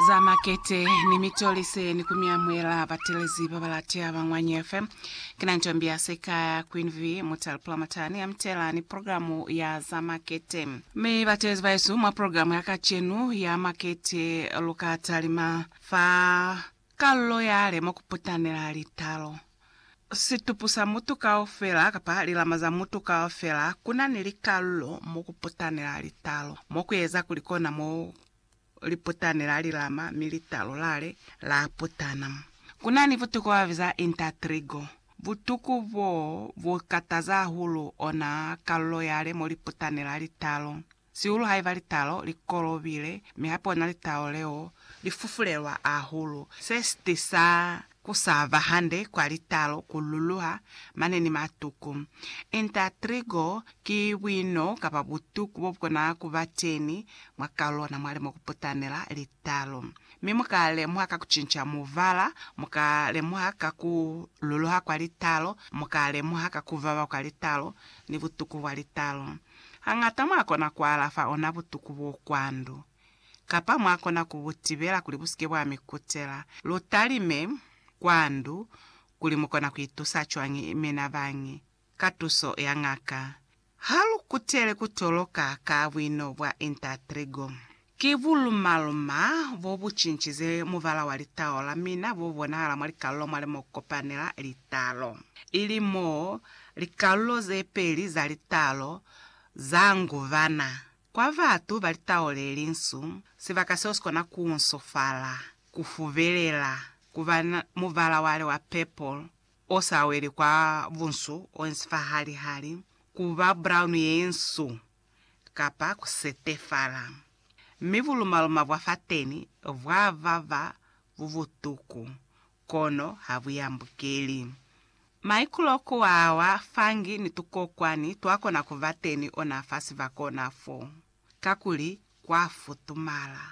za makete ni mitolise ni ku mi amuhela batelezi ba ba latea ba Ñwanyi FM. Ki na Ntombi ya Sekaya, Queen V, Mutale Pulamata ni Amtela ni programu ya za makete. Mi batelezi bahesu, mwa programu ya kacenu ya makete lu ka talima fa kalulo yale mwa ku putanela litalo. situpu sa mutu kaufela kapa lilama za mutu kaufela, ku na ni likalulo mo ku putanela litalo, mo ku eza kuli kona mo li putanela lilama mi litalo lale la putana. Ku na ni butuku ba ba biza intertrigo. Butuku boo bu kataza hahulu ona kalulo yale mo li putanela litalo. Sihulu haiba litalo li kolobile, mi hape ona litalo leo li fufulelwa ahulu. Se si tisa ku sa ba hande kwa litalo ku luluha mane ni matuku. Inta trigo ki buino kapa butuku bo bu kona ku ba teni mwa kalulo ona mwa li mo ku putanela litalo. Mi mu ka lemuha ka ku cinca mubala, mu ka lemuha ka ku luluha kwa litalo, mu ka lemuha ka ku baba kwa litalo ni butuku bwa litalo. Hañata mwakona kualafa ona butuku bo kwa ndu, kapa mwakona ku bu tibela kuli bu si ke bwa mi kutela. Lu talime kwa ndu kuli mu kona ku itusa cwañi mina bañi ka tuso ya ngaka. Ha lu kutele ku toloka ka buino bwa Intertrigo. Ki buluma-luma bo bu cincize mubala wa litalo la mina bo bonahala mwa likalulo mwa li mo ku kopanela litalo, ili mo likalulo ze peli za litalo za nguvana. Kwa batu ba litalo le linsu, sibaka seo si kona ku unsufala, ku fubelela, ku ba ni mubala wa li wa purple o sa weli kwa bunsu, o insi fa hali-hali, ku ba brown ye insu, kapa ku setefala, mi bulumaluma bwa fateni bwa vava bu butuku, kono ha bu yambukeli. Maikulo ku wa wa fangi ni tukokwani twa kona ku ba teni ona fa sibaka ona fo, kakuli kwa futumala.